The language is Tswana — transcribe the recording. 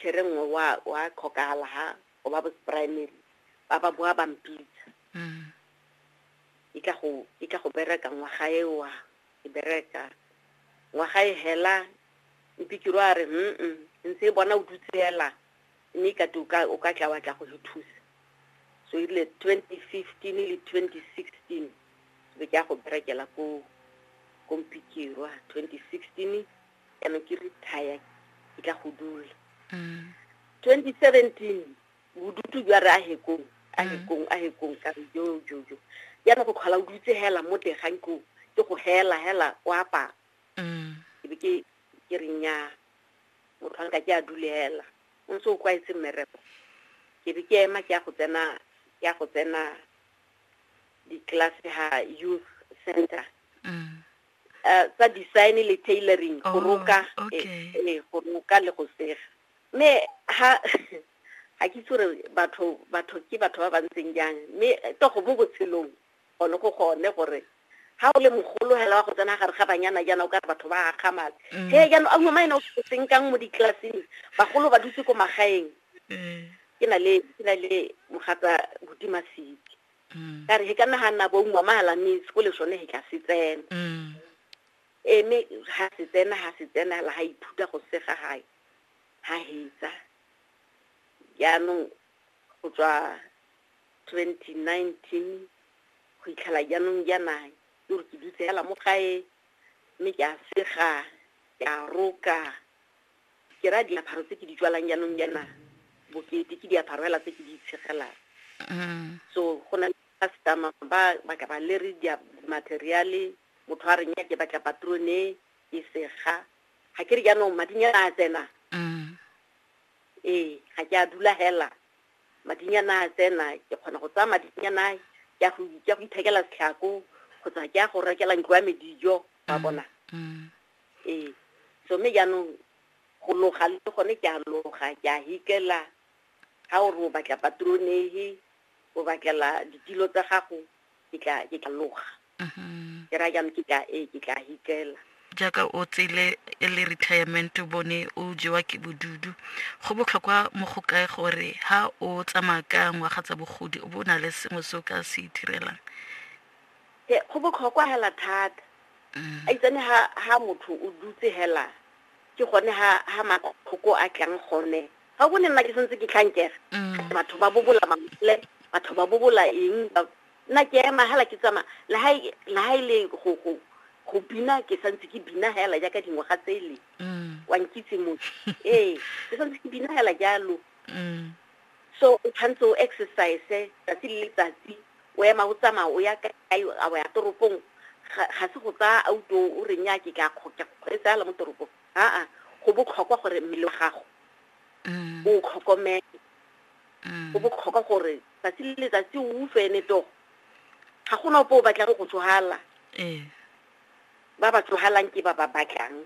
Kere nngwe wa, wa tlhokagala ha o ba bosprimary, ba ba boa ba mpitsa. Mm. E tla go, e tla go bereka ngwaga e wa, e bereka. Ngwaga e hela, mpikiro a re, mm, ntse e bona o dutse hela, mme ka te o ka, o ka tla wa tla go go thusa. So e rile 2015 le 2016, be ke ya go berekela ko, ko mpikirwa, 2016 ka me ke retire ke tla go dula 2017 bodutu jwa re a hekong a mm. hekong a hekong ka re jo jo jo yana go tlhola o dutse hela mo tegang ko ke go hela hela o apara mm. ke be ke ke re nya motho a nka ke a dulela o ntse o kwaetse mmereko ke be ke ema ke ya go tsena ke ya go tsena di-class ha youth center mm. uh, tsa design le tailoring go oh, roka okay. e, e, go roka le go sega mme ha ga ke tsore batho batho ke batho ba ba ntseng jang mme eh, togo mo botshelong gone go gone gore ga o le mogolo hela wa go tsena gare ga banyana jaana o ka re batho ba akgamala mm. he jaanong a ngwama ene o seng kang mo ditlellaseng bagolo ba dutse ko magaeng mm. ke na le ke na le mogata botimasiki mm. ka re he ka naganna boungwa magala mme seko le sone he ka se tsena mm. eme ga se tsena ga se tsena la ga iphuta go sega gae ga hetsa jaanong go tswa twenty nineteen go itlhela jaanong jaana ke gore ke dutse fela mo gae mme ke a sega ke a roka Ke raya diaparo tse ke di tswalang jaanong jaana bokete ke diaparo fela tse ke di itshegelang. So go na le customer ba ba ka ba le re dia materiale motho a re nya ke batla patrone e sega. Ga ke re jaanong madinyana a tsena. Ee, ga ke a dula hela. Madinyana a tsena ke kgona go tsaya madinyana ke a go ke a go ithekela setlhako kgotsa ke a go rekela ntlo ya me dijo ba bona. Ee. So mme jaanong go loga le gone ke a loga, ke a hikela. Ga o re o batla patronehe, o batlela ditilo tsa gago, ke tla ke tla loga. Ke raya jaanong ke tla ee ke tla hikela. Jaaka o tsele e le retirement o bone o jewa ke bodudu, go botlhokwa mo go kae gore ha o tsamaya ka ngwaga tsa bogodi o bo o na le sengwe se o ka se ithirelang? Ee, go botlhokwa fela thata. a itsane ha ha motho o dutse hela ke gone ha ha matlhoko a tlang gone ga o bone nna ke sentse ke tlhankega mm. batho ba bobola mamole batho ba bobola eng nna ke ema hela ke tsama le ha e, le ha ile e go go go bina ke santse ke bina hela jaaka dingwaga tsele mm. wa nkitse motho ee ke santse ke bina hela jalo mm. so o tshwanetse o exercise tsatsi le letsatsi o ema o tsamaya o ya kae a o ya toropong ga ga se go tsaya auto o re nya ke ka kgo- ke kgweetsa ala mo toropong aa go botlhokwa gore mmele wa gago Mm. o tlhokomele Mm. go botlhokwa gore tsatsi le letsatsi o utlwe ene togo ga gona opo o batlang go tsogala Ee. ba ba tsogalang ke ba ba batlang